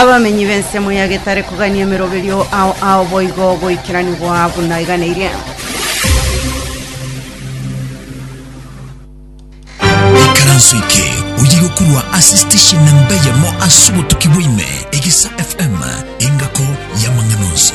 Abamenyi b'ensemo ya getare kogania emeroberio ao ao boigo goikeranigwa buna eganeirie. ikaranso eke oye gokurwa ase station namba yamo ase obotuki bwaime egesa fm engako y'amang'ana onsi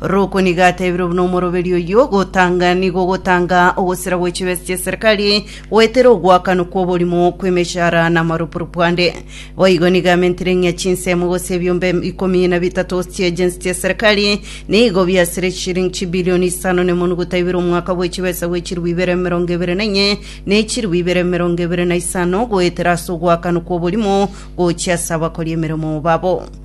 Roko nigo atebirwe buna omoroberio oyio, Gotanga nigo gotanga ogosira gwe chibesa chi'eserekari, goetera ogoakanwa kw'oborimo kw'emechara na amarupurupu ande. Boigo nigo amentire ng'a chinsemo gose ebiombe ikomi na bitato chi'ejensi chi'eserekari nigo biasire chishilingi chibilioni isano nemonuguta ibere omwaka bwe chibesa bwe chilifu ibere emerongo ebere na enye ne chilifu ibere emerongo ebere na isano, goetera ase ogoakanwa kw'oborimo gochia ase abakori emeremo babo.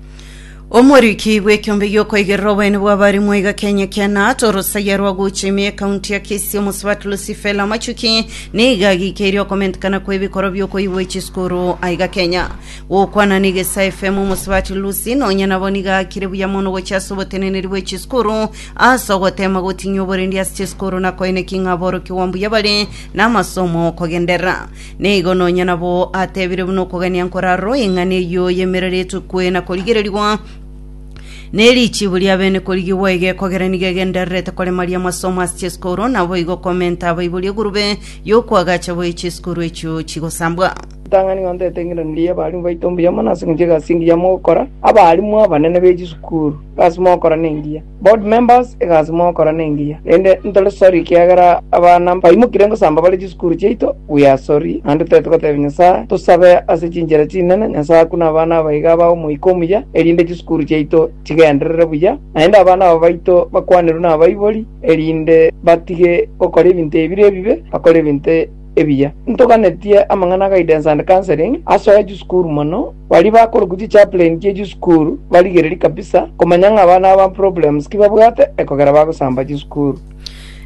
Omoriki bw'ekiombe gi'okoigerera oboene bw'abarimwa iga Kenya Kenat orosaya rwa gocha ime ekaunti ya Kisii omosubati Lucifela Machuki niga agikeirie okomentekana kw'ebikoro bi'okoigwa echisukuru aiga Kenya gokwana n'egesa FM omosubati Lucy nonya nabo niga akire buya mono gocha ase oboteneneri bw'echisukuru ase ogotema gotinya oborendi ase chisukuru na koeneki ng'a aborokigwa mbuya bare n'amasomo kogenderera Nigo nonya nabo atebire buna okogania nkorarwo eng'ana eyio y'emerero etukwe na korigererigwa, ne richibu ria bene korigigwa iga ekogera nigo egendererete koremaria amasomo ase chisukuru, naboigo komenta abaibori egurube y'okoagacha boyie chisukuru echio chigosambwa. Ritang'ani ng'a ntoetengerererie abarimu baito mbuya mono ase eng'encho y'egasi engiya mogokora, abarimu abanene be chisukuru, egasi mogokora nengiya. Board members egasi mogokora nengiya, rende ntore sorry kiagera abana mbaimokire ngosamba bare chisukuru chiaito, we are sorry, naende tore togotebia Nyasae tosabe ase chinchera chinene Nyasae akune abana aba iga aba omoika omuya erinde chisukuru chiaito chigenderere buya, naende abana aba baito bakwanerwe nabaibori erinde batige gokora ebinto ebire ebibe bakore ebinto ebiya. Ntoganetie amang'ana a Guidance and Counselling asoe chisukuru mono, baria bakorokwa chichaplain chie chisukuru barigererie kabisa komanya ng'a abana aba problems ki babwate ekogera bagosamba chisukuru.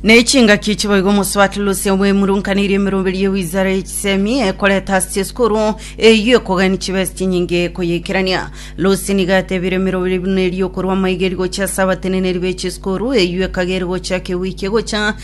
Ne chingaki chiboigo omosubati Lucia bwemurunkaneirie emeroberi ye wizara ye chisemi ekoreta ase chisukuru eyio ekogania chibesa chinyinge koyeikerania. Lucia nigo atebire emeroberi buna eria okorwa amaiga eri gochia ase abateneneri be chisukuru eyio ekagere gochaka ewiki egocha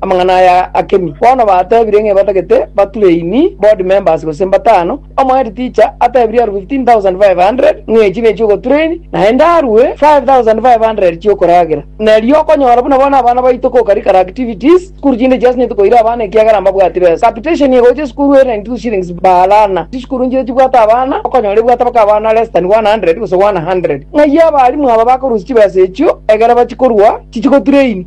Amang'ana aya akemi, bono batebire ng'a batagete bature ini board members gose mbatano, omohead teacher atebirie aru 15,500 ng'a echi ne chi'ogotura ini, naende arue 5,500 chi'okoragera. Na erio okonyora buna bono abana baito co curricular activities, sukuru chinde chiasenyetwe koira abana ekiagera mbabwati besa. Capitation ye gocha esukuru ere 92 shillings per learner. Chisukuru nchire chibwate abana, okonyora ebwate mpaka abana less than 100 gose 100. Ng'ai abalimu aba bakorusia chibesa echio ekero bachikorua chichigotura ini?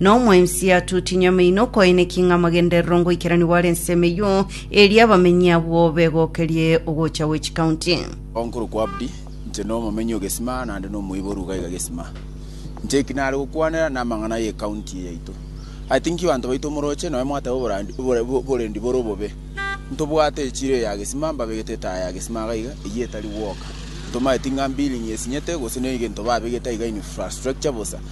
Na omwensia tutiny'amaino okoeneki ng'a amagenderero ngoikeranigwa are ensemo eyio, erio abamenyi abwo begokerie ogocha gwe chikaunti. Nkorokwa Abdi, inche nomomenyi o Gesima naende nomoiboru iga iga Gesima. Inche eki nare gokwanera namang'ana y'ecounty eye yaito. I think banto baito omoroche nonya mwateba oborandi obore oborendi bore obobe. Ntobwate echiro eye ya Gesima mbabegete etaya ya Gesima iga iga eyio etari gwoka. Ntomanyeti ng'a billing esinyete gose neiga into babegete iga infrastructure bosa.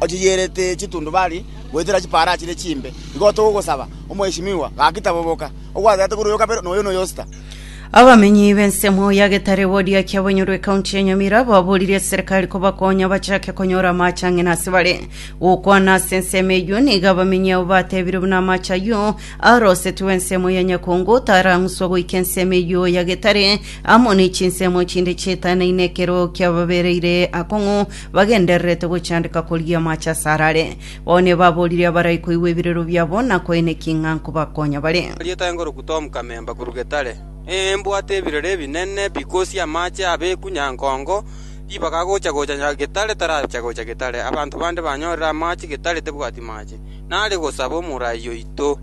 ochiyerete chitundubari goetera chipaarachi ne chimbe. Igo togosaba, Omweshimiwa, gaki taboboka, ogwatete korwa oyo kabere, na oyo na oyo sita. Abamenyi b'ensemo ya Getare wodi ya Kiabonyoro ekaunti ya Nyamira baboorire eserikari kobakonya bachake konyora amache ang'ina ase bare. Gokwana ase ensemo eyio nigo abamenyi abo batebire buna amache ayio arosetigwe ensemo ya Nyakongo tarang'uswa goika ensemo eyio ya Getare amo ne chinsemo chinde chietanaine ekero kiababereire akong'u bagendererete gochandeka korigia amache asare are. Bao nebaboorire abarai koigwa ebirero biabo na koeneki ng'a nkobakonya bare. Rieta engoruku Tom Kamemba korwa Getare, Ee mbwate ebirero ebinene bikosia amache abeeku nyankongo, ribaga agocha gocha nya Getare taracha gocha Getare, abanto bande banyorire amache Getare tebwati mache. Nare gosaba omorai oito,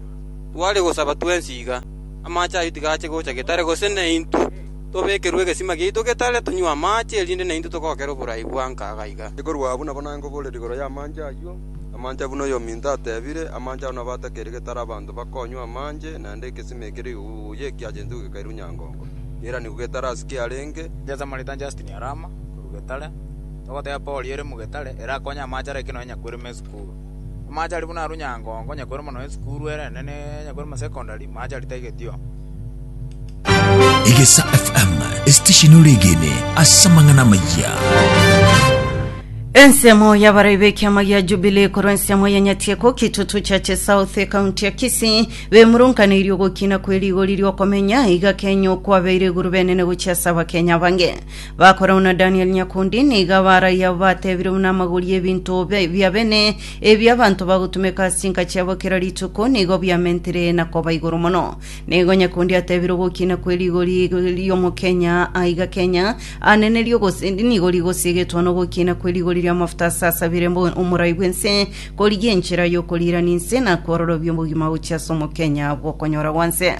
tware gosaba twensi iga, amache ayio tigache gocha Getare gose naintwe. Tobekerwe egesima giaito getare tonywe amaache, erinde naintwe togokere oborai bwanka iga iga. Ekorwa abwo nabo naye ngoboorera igoro y'amaache ayio, amaache abwo buna oyominto ateebire, amaache ao nabo atakeire getare abanto bakonywa amaache, naende egesima ekere iguguu y'ekiachenso gekairwe nyangongo, giairanigwe getare ase kiarenge. Inche Samarita Justin Arama, korwa Getare, togoteeba Paul ere mu Getare, ere akonye amaache ara ekero nonye nyakoirwe me esukuru. Amache aria buna arunyangongo, onye kore mono esukuru erenene, ne onye kore masekondari, amache aria taigetio. Egesa FM esitesheni oregene ase amang'ana amayia ensemo yabarai b'ekiama gia jubilee korwa ensemo ya nyatieko kitutu chache south ekaunti ya kisii bemurunkaneirie ogokina kwe rigori riokomenya iga kenya okwabeire iguru benene gochia ase abakenya bange Bakora buna Danieli nyakundi, nigo abaaraia abo bateebire buna amagori 'ebinto be- bia bene ebi abanto bagotumeka ase chinka chiabo kera rituko nigo biamentire na koba igoro mono. Nigo nyakundi ateebire ogokiina kwe rigori ri'omokenya aiga Kenya anene rigose- nigo rigosiegetwa nogokiina kwe rigori ri'amafuta ase asabire mbo- omorai bw'ense korigia enchera y'okoriirania ense na kwororobia obogima gochia ase omokenya bw'okonyora gwa nse.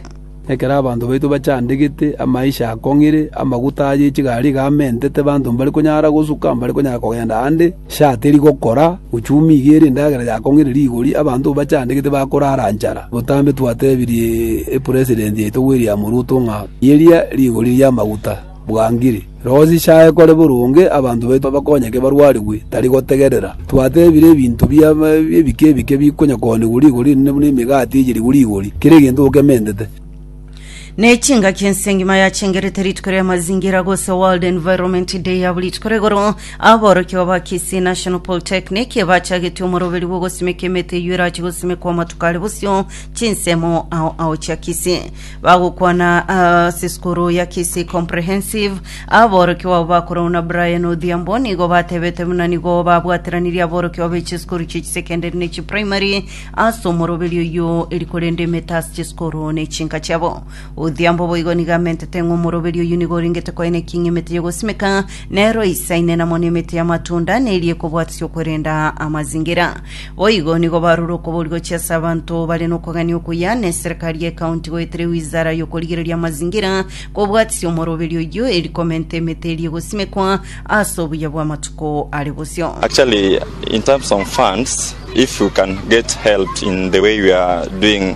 Ekero abanto baito bachandegete, amaisha akong'ire, amaguta aye chigari iga amentete, abanto mbari konyara gosuka, mbari konyara kogenda aande, sha teri gokora, uchumi iga ere endagera yakong'ire rigori, abanto bachandegete bakorara nchara. Botambe twatebirie Epresident yaito William Ruto ng'a, Yeria rigori ri'amaguta. bwangire. Rogo chichae kore boronge, abanto baito bakonyeke barwarigwe, tari gotegerera twatebire ebinto bia ebike ebike bikonyakoonigwa rigori inene buna emegati eyerigwe rigori, kera egento okementete. Ne chingaki ensengima yachengerete rituko ria mazingira gose World Environment Day abo rituko rigoro aborokigwa ba Kisii National Polytechnic bachagetie omoroberio bw'ogosimeka emete eyio erache gosimekwa amatuko are bosio chinsemo ao ao chia Kisii. bagokwana ase sukuru ya Kisii Comprehensive. Aborokigwa abo bakorwa na Brian Odhiambo nigo batebete buna nigo babwateranirie aborokigwa be chisukuru chie chisekendari ne chiprimary ase omoroberi oyio eri korenda emete ase chisukuru ne chinka chiabo. Odhiambo boigo nigo amentete ng'a omoroberi oyio nigo orengete koeneki ng'a emete y'ogosimeka nero eisaine namo nemete y'amatunda neri ekobwatisia okwerenda amazingira. Boigo nigo barure okoboria gochia ase abanto bare nokogania okuya, na eserekari y'ecounty goetera ewizara y'okorigereria amazingira kobwatisia omoroberio oyio eri komenta emete eria egosimekwa ase obuya bw'amatuko are bosio. Actually in terms of funds if you can get helped in the way you are doing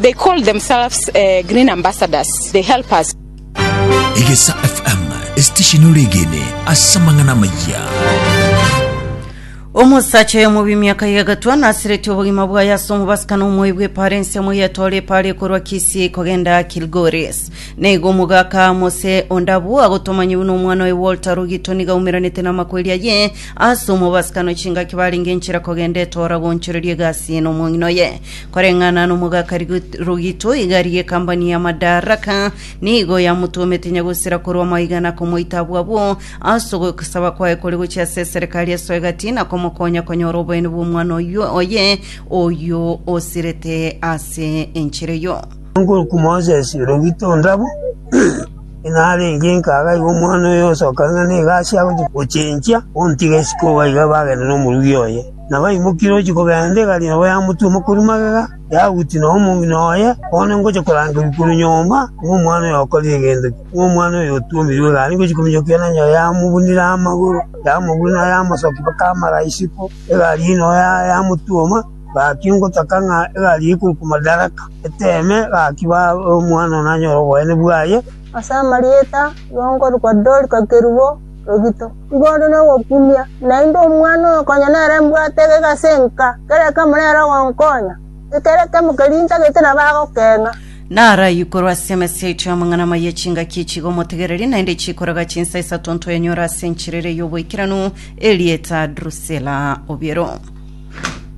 They call themselves green ambassadors, they help us. Egesa FM, esitesheni ore egene ase amang'ana amayia. Omosacha oyo omobi emiaka ye egatwa nasireti obogima bwaye ase omobasakano omoe bw'epara ensemo yetore epara ekorwa Kisii kogenda Kilgoris. Neigo omogaka Mose Ondabu agotomanyiwu n'omwana oye Walter Rugito niga aumeranete namakweri aye ase omobasakano chingaki barenge enchera kogenda etora goonchoreria egasi eye nomong'ina oye. Koreng'ana nomogaka rogito igari y'ekambani ya Madaraka nigo yamotomete nyagosera korwa maiga na komoita abwo abwo ase ogosaba kwaye kore gochia ase eserekari ya Soegati na komokonya konyora oboyene bw'omwana oyio oye oyio osirete ase enchera eyio. Omokuruku Moses rogito onde abwo, inarenge inkaga iga omwana oyo osoka ng'a negasi agochia gochenchia, ontiga isiko iga bagende nomorugi oye. Na baimokirie gochia kogenda egari eye ya motwe mokori magega, yagutia nonya omong'ina oye, bono ngocha korangerwa korwa nyomba, ng'a omwana oyo okorire egento ki? Ng'a omwana oyo otuomirwe egari ngochia kominyokia nonya enyara yamobunire amagoro, yamobuna nonya yamosokia mpaka amara isiko, egari eye nonya yamotuoma. Gaki ngotaka ng'a egari eye ekorokwa Madaraka eteme, gaki omwana oyo nanyore oboene bwaye. Ase amarieta, nigo nkorokwa Dorika kerubo, rogito. Igoro nogokumia, naende omwana oyo konya nere mbwate egeka ase enka, kera ekemo nere ogonkonya, ekero ekemo keria intagete nabo agokeng'a. Naro ayio korwa ase emesa yaito y'amang'ana amaya chingaki echiga omotegereri, naende chikoraga chinsa isato ntoyanyora ase enchera eria y'oboikeranu, erieta Drusela obiero.